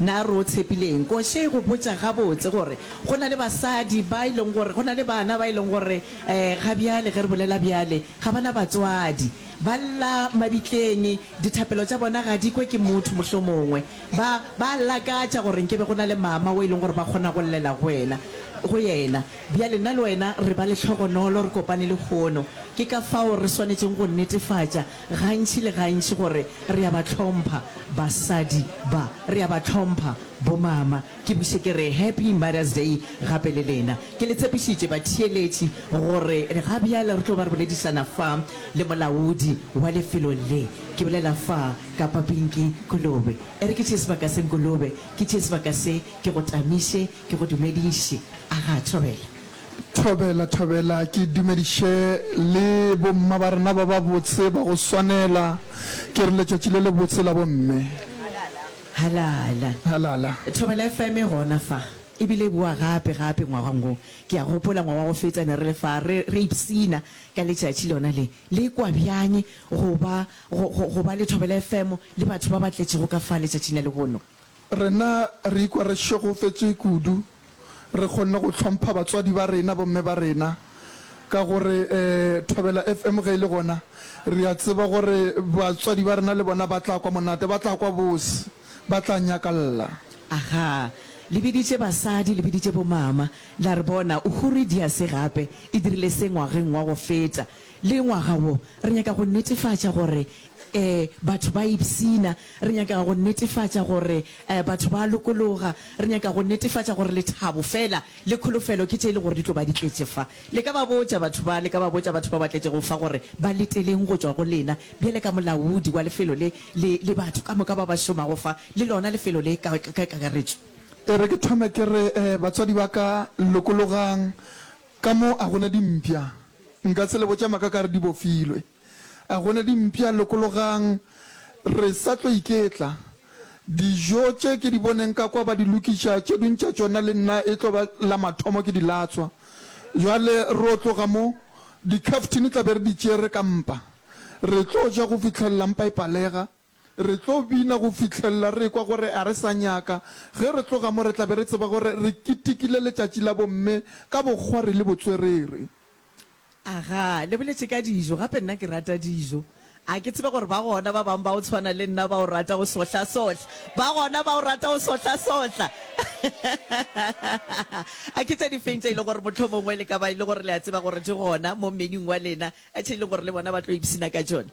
Na re o tshepile eng? Ko še go botša gabotse gore go na le basadi ba e leng gore, go na le bana ba e leng gore eh, ga bjale ge re bolela bjale, ga ba na batswadi. Ba lla mabitleng, dithapelo tša bona ga di kwe ke motho mohlomongwe. Ba, ba a lakatša gore nke be go na le mama o e leng gore ba kgona go llela go wena, go yena. Bjale nna le wena re ba lehlogonolo, re kopane lehono. Ke ka fao re swanetšeng go netefatša. gantši le gantši gore re a ba hlompha basadi ba, re a ba hlompha bomama. Ke buše ke re Happy Mother's Day gape le lena. Ke le tshepišitše, batheeletši, gore ga bjale re tlo ba re boledišana fa le molaodi wa lefelo le, ke bolela fa ka Papinki Kolobe. E re ke tšee sebaka se, Nkolobe, ke tšee sebaka se, ke go tamiše, ke go dumediše. A ga a thobela? Thobela, thobela, ke dumediše le bomma ba rena ba babotse ba go swanela. Ke re letšatši le lebotse la bomme. Halala. Halala. Thobela FM e gona fa, e bile e bowa gape, gape ngwagong wo. Ke a gopola ngwaga wa go feta ne re le fa, re, re ipshina ka letšatši lona le. Le e kwa bjang go ba, go, go, go ba le Thobela FM le batho ba ba tletšego ka fa letšatšing la lehono? Rena re ikwa re šegofetšwe kudu. Re kgonne go hlompha batswadi ba rena, bomme ba rena, ka gore Thobela FM ge e le gona, re a tseba gore batswadi ba rena le bona ba tla kwa monate, ba tla kwa bose, ba tla nyakalla. Aha, le biditše basadi, le biditše bomama, la re bona, Uhuridiase gape e dirile se ngwageng wa go feta. Le ngwaga wo, re nyaka go netefatša gore ee, batho ba ipshina. Re nyaka go netefatša gore ee, batho ba lokologa. Re nyaka go netefatša gore lethabo feela le kholofelo ke tše e le gore di tlo ba di tletše fa. Le ka ba botša batho ba, le ka ba botša batho ba ba tletšego fa gore ba leteleng go tšwa go lena, bjale ka molaodi wa lefelo le, le, le batho ka moka ba ba šomago fa, le lona lefelo le ka, ka, ka kakaretšo. E re ke thome ke re, ee, batswadi ba ka, lokologang. Ka mo a gona dimpya? Nka se le botša maka ka re di bofilwe. A gona dimpya? Lokologang, re sa tlo iketla. Dijo tše ke di boneng ka kwa ba di lokiša, tše ding tša tšona le nna e tlo ba la mathomo ke di latswa. Bjale ro tloga mo, dikhaftine tla be re di tšere ka mpa. Re tlo ja go fihlelela mpa e palega. Re tlo bina go fihlelela re ekwa gore a re sa nyaka. Ge re tloga mo re tla be re tseba gore re ketekile letšatši la bomme ka bokgwari le botswerere. Aga, le boletše ka dijo, gape nna ke rata dijo. A ke tsebe gore ba gona ba bangwe ba go tshwana le nna ba o rata go sohlassohla? Ba gona ba o rata go sohlassohla? A ke tše difeng tše e lego gore mohlomongwe le ka ba e le gore le a tseba gore di gona mo menuing wa lena tše e lego gore le bona ba tlo ipshina ka tšona?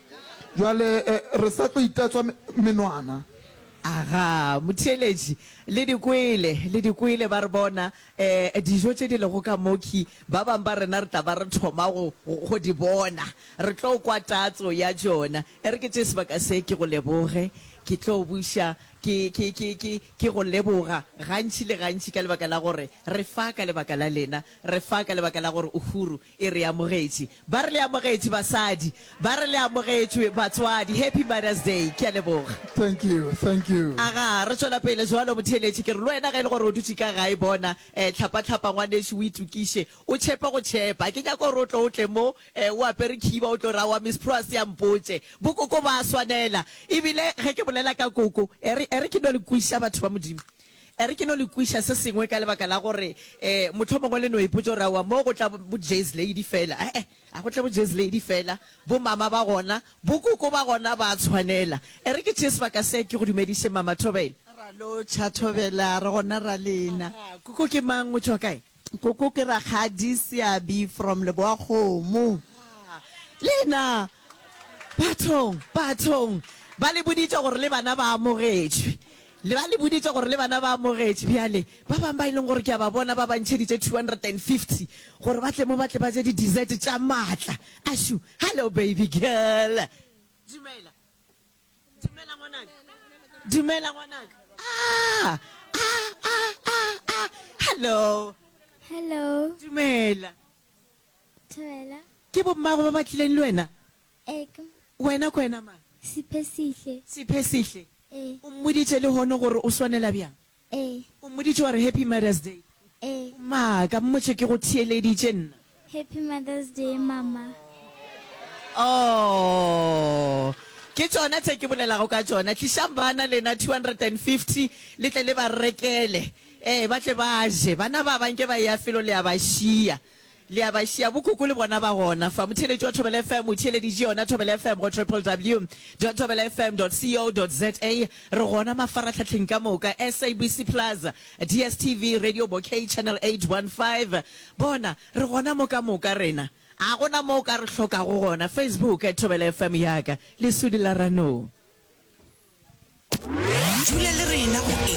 Bjale re sa tlo itatswa menwana. Aga, motheeletši, le di kwele, le di kwele, ba re, Bona, ee, dijo tše di lego ka mokhwi, ba bang ba rena re tla ba re thoma go, go di bona. Re tlo kwa tatso ya tšona. E re ke tše sebaka se, ke go leboge. Ke tlo buša, ke, ke, ke, ke, ke go leboga gantši le gantši ka lebaka la gore re fa ka lebaka la lena, re fa ka lebaka la gore o huru. E re amogetše. Ba re le amogetše basadi. Ba re le amogetšwe batswadi. Happy Mother's Day. Ke a leboga. Thank you, thank you. Aga, re tšwela pele jwalo, motheeletši. Ke re le wena ge e le gore o dutše ka gae, bona, eh, hlapa-hlapa ngwanešu, o itokiše, o tšhepe go tšhepa. Ha ke nyake gore o tlo o tle mo, eh, o apere khiba, o tlo re, Aowa, Miss Prossy, a mpotše. Bokoko bo a swanela. Ebile ge ke bolela ka koko, e re, e re ke no le kweša, batho ba Modimo. E re ke no le kweša se sengwe ka lebaka la gore eh, mohlomongwe le no ipotša gore aowa mo go tla bo Jazz Lady fela. Eh, eh, a go tla bo Jazz Lady fela, bo mama ba gona, bo koko ba gona ba tshwanela. E re ke tšee sebaka se ke go dumediše Mama Thobela. Ra lo tšha Thobela, re gona ra lena. Koko ke mang, o tšwa kae? Koko ke rakgadi Seabi from Leboakgomo. Haa! Lena! Bathong! Bathong! Ba le boditše gore le bana ba amogetšwe. Le ba le boditše gore le bana ba amogetšwe. Bjale, ba bang ba e leng gore ke a ba bona ba ba ntšheditše 250 gore ba tle mo ba tle ba je di-dessert tša maatla. Ashu! Hello baby girl! Dumela. Dumela ngwanaka. Dumela ngwanaka. Ah, ah, ah, ah, ah. Hello. Hello. Dumela. Dumela. Ke bo mmago ba ba tlileng le wena? Eka. Wena ko wena mang? Siphesihle. Siphesihle. Eh. O mmoditše le hono gore o swanela bjang? Ee. O mmoditše wa re Happy Mother's Day? Ee. O maaka, mmotše ke go theeleditše nna. Happy Mother's Day, Mama. Aww. Ke tšona tše ke bolelago ka tšona. Tlišang bana lena 250 le tle le ba rekele, ee, ba tle ba je. Bana ba ba nke ba eya felo le ya ba šiya. Le a ba šia bokoko le bona ba gona fa. Motheeletši wa Thobela FM o theeleditše yona Thobela FM go www.thobelafm.co.za. Re gona mafarahlahleng ka moka, SABC Plus, DSTV, Radio Bouquet, Channel 815. Bona, re gona mo ka moka rena. Ga go na mo o ka re hlokago gona. Facebook, Thobela FM ya ka, lesudi la Ranoo. Dula le rena go